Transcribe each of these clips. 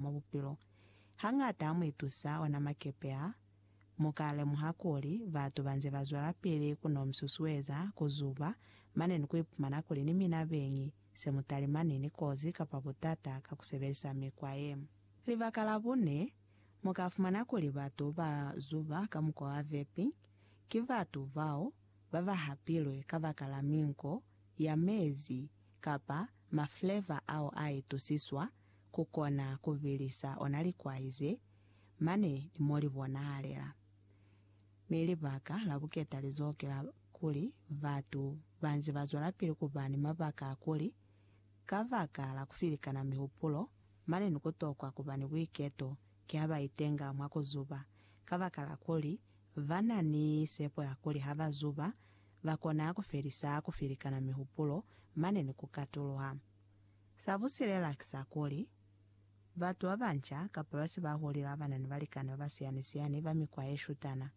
mwa bupilo. Hañata ha mu itusa ona makepe a, mu ka lemuha kuli batu ba nze ba zwelapili ku no mi susueza ku zuba, mane ni ku ipumana kuli ni mina beñi se mu talimani ni kozi kapa butata ka ku sebelisa mikwa ye. Libaka la bune, mu ka fumana kuli batu ba zuba ka mukwa wa vepi, ki batu bao ba ba hapilwe kabakala minko ya mezi kapa mafleva ao a itusiswa ku kona ku bilisa ona likwai ze, mane ni mo li bonahalela. Mi libaka la buketa li zokela kuli batu ba nze ba zwelapili ku ba ni mabaka a kuli, ka baka la ku filikana mihupulo, mane ni ku tokwa ku ba ni buiketo ki ha ba itenga mwa ku zuba, kabakala kuli ba na ni sepo ya kuli ha ba zuba, ba kona ku felisa ku filikana mihupulo mane ni ku katuluha. Sa ku silela ki sa kuli, batu ba banca kapa ba se ba hulile ba ba na ni balikani ba ba siyani-siyani ba mikwa ye shutana,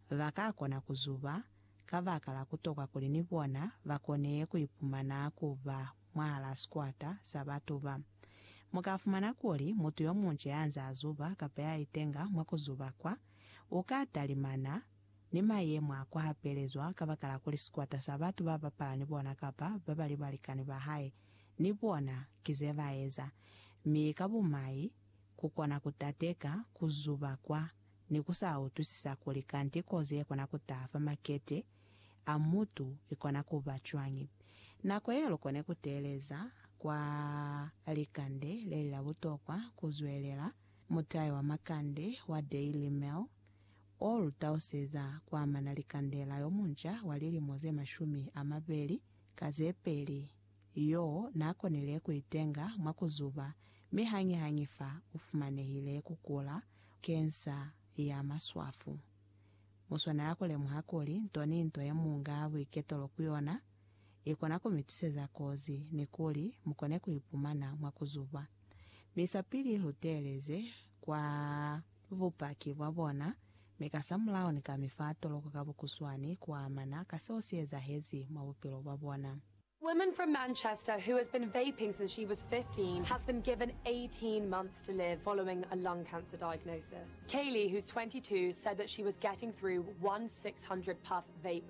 ba ka kona ku zuba kabakala ku tokwa kuli ni bona ba kone ku ipumana ku ba mwahalaa sikwata sa batu ba. Mu ka fumana kuli mutu yo munca ya nze a zuba kapa ya itenga mwa ku zuba kwa, u ka talimana ni mayemo a ku hapelezwa kabakala kuli sikwata sa batu ba bapala ni bona kapa ba ba li balikani ba hae ni bona ki ze ba eza, mi ka bumai ku kona ku tateka ku zuba kwa ni ku sa utwisisa kuli kanti kozi ye kona ku taha fa makete a mutu i kona ku ba cwañi. Nako ye lu kone ku teeleza kwa likande le li la butokwa ku zwelela, mutayo wa makande wa Daily Mail O lu tauseza kuamana li kandela yo munca wa lilimo ze mashumi a mabeli ka ze peli, yo n'a konile ku itenga mwa ku zuba mi hañihañi fa u fumanehile ku kula kensa ya maswafu. Mu swanela ku lemuha kuli nto ni nto ye mu nga buiketelo ku yona i kona ku mi tiseza kozi ni kuli mu kone ku ipumana mwa ku zuba. Mi sapili lu teeleze kwa. bupaki bwa bona, mi kasamulaho ni ka mi fa toloko ka bukuswani ku amana ka seo si ezahezi mwa bupilo bwa bona. Woman from Manchester who has been vaping since she was 15 has been given 18 months to live following a lung cancer diagnosis. Kaylee, who's 22, said that she was getting through one 600 puff vape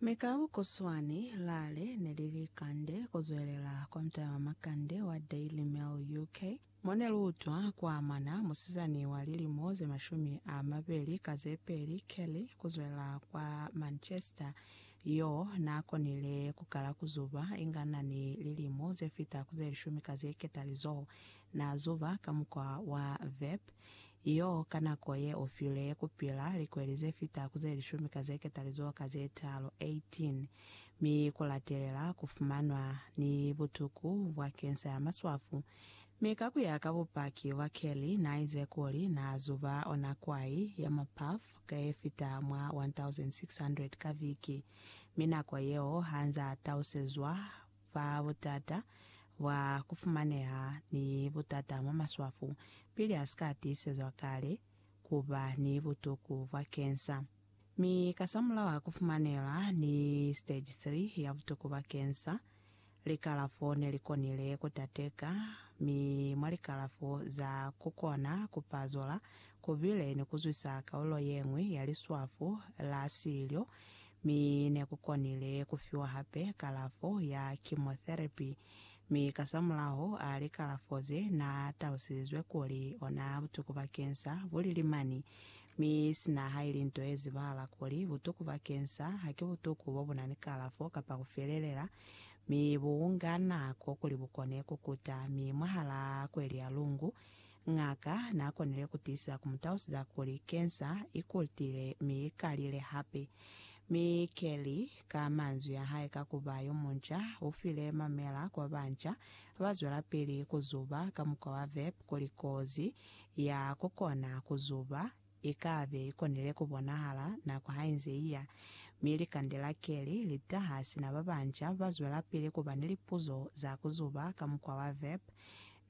Mi ka bukuswani, lale ne li li kande ku zwelela kwa mutala wa makande wa Daily Mail UK, mo ne lu utwa ku amana musizani wa lilimo ze mashumi a mabeli ka ze peli, Kelly, ku zwelela kwa Manchester, yo n'a konile ku kala ku zuba inga n'a ni lilimo ze fita ku ze lishumi ka ze ketalizoho. N'a zuba ka mukwa wa vape, Iyo ka nako ye u file ye kupila likweli ze fita ku ze lishumi ka ze ketalizoho ka ze talu, 18, mi ku latelela ku fumanwa ni butuku bwa kensa ya maswafu. Mi ka ku ya ka bupaki bwa Kelly, na ize kuli na zuba ona kwai ya ma puff ka ye fita mwa 1,600 ka viki, mi nako yeo ha nza tausezwa fa butata bwa ku fumaneha ni butata mwa maswafu pili a si ka tiisezwa kale ku ba ni butuku bwa kensa. Mi kasamulaho a ku fumanela ni stage 3 ya butuku bwa kensa, likalafo ne li konile ku tateka, mi mwa likalafo za ku kona ku pazola ku bile ni ku zwisa kaulo ye ñwi ya liswafu la silyo mi ne ku konile ku fiwa hape kalafo ya chemotherapy, mi kasamulaho a likalafo ze naa talusilizwe kuli ona butuku ba kensa bu lili mani, mi sina ha ili nto ye zibahala kuli butuku ba kensa ha ki butuku bo bu na ni kalafo kapa ku felelela, mi bu nga nako kuli bu kone ku kuta, mi mwahalaa kweli ya lungu Ng'aka n'a konile ku tiisa ku mu talusiza kuli kensa i kutile mi i kalile hape. Mi Kelly, ka manzwi a hae ka ku ba yo munca, u file mamela ku ba banca ba zwelapili ku zuba ka mukwa wa vape kuli kozi ya ku kona ku zuba I ka be i konile ku bonahala nako ha i nze i ya, mi likandela ke li li taha sina ba banca ba zwelapili ku ba ni lipuzo za ku zuba ka mukwa wa vape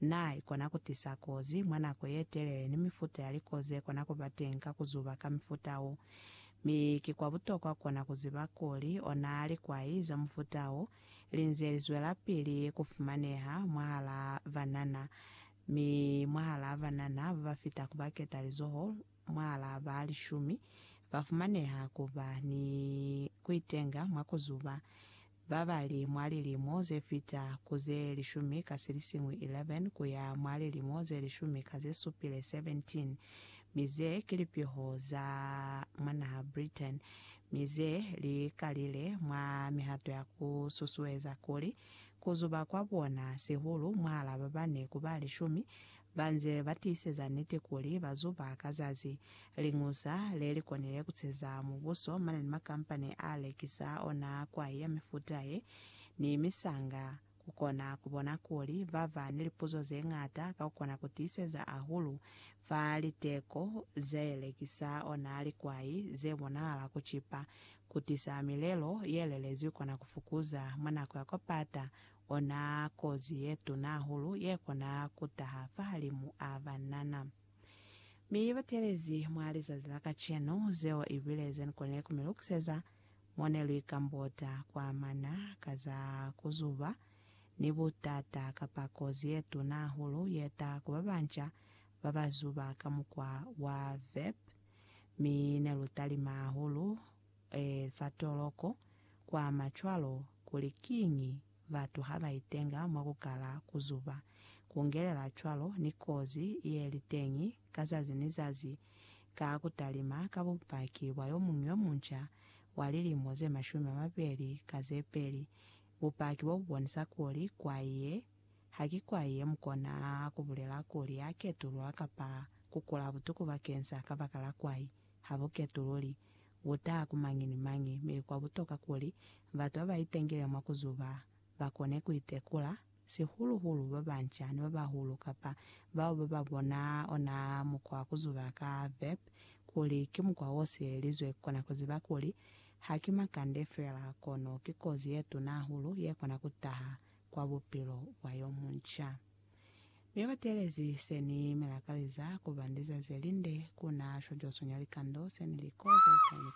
na i kona ku tisa kozi mwa nako ye telele ni mifuta ya liko ze kona ku ba teñi ka ku zuba ka mufuta wo. Mi ki kwa butokwa kona ku ziba kuli ona likwai za mufuta wo li nze li zwelapili ku fumaneha mwahalaa banana Mi mwahalaa banana babafita ku baketalizoho mwahalaa ba lishumi, bafumaneha kuba ni kuitenga mwa kuzuba, babali mwa lilimo zefita ku ze lishumi ka silisiñwi 11 kuya mwa lilimo ze lishumi ka zesupile 17, mi ze ki lipiho za mwa naha Britain, mi ze li kalile mwa mihato ya ku susueza kuli Ku zuba kwa bona sihulu mwaal'a babane ku ba lishumi, ba nze ba tiiseza niti kuli ba zuba ka zazi. Liñusa le li konile ku ceza mubuso mane ni makampani a lekisa ona kwai ya mifuta ye, ni misanga. Ku kona ku bona kuli ba ba ni lipuzo ze ñata ka ku kona ku tiiseza hahulu fa liteko ze lekisa ona likwai ze bonahala ku cipa Kutisa milelo ye lelezwi kona ku fukuza, mwa nako ya kopata, ona kozi ye tuna hahulu ye kona ku taha fahalimu a banana. Mi i batelezi mwa lizazi la kacenu, zeo i bile ze ni konile ku mi lukiseza mo ne lu ikambota ku amana ka za ku zuba ni butata kapa kozi ye tuna hahulu ye taha ku babanca ba ba zuba ka mukwa wa vape, mi ne lu talima hahulu za toloko, kwa ma cwalo kuli kiñi batu ha ba itenga mwa ku kala ku zuba, ku ngelela cwalo ni kozi ye li teñi ka zazi ni zazi ka ku talima ka bupaki bwa yo muñwi yo munca wa lilimo ze mashumi a mabeli ka ze peli, bupaki bo bu bonisa kuli kwa ye Ha ki kwa ye mu kona ku bulela kuli a ketulula kapa ku kula butuku bakeni sa kabakala kwai. Ha bu ketululi. Bu taha ku mañi ni mañi, mi kwa butoka kuli batu ba ba itengile mwa ku zuba ba kone ku itekula, sihulu-hulu ba banca ni ba bahulu kapa bao ba ba bona ona mukwa wa ku zuba ka vep kuli ki mukwa wo sielelizwe ku kona ku ziba kuli ha ki makande fela kono ki kozi ye tuna hahulu ye kona ku taha kwa bupilo bwa yo munca. Mi ba teelezi se ni mi lakaliza ku ba ni lizazi le linde ku na shwa Josunya likando se ni li kozo kaini-kaini.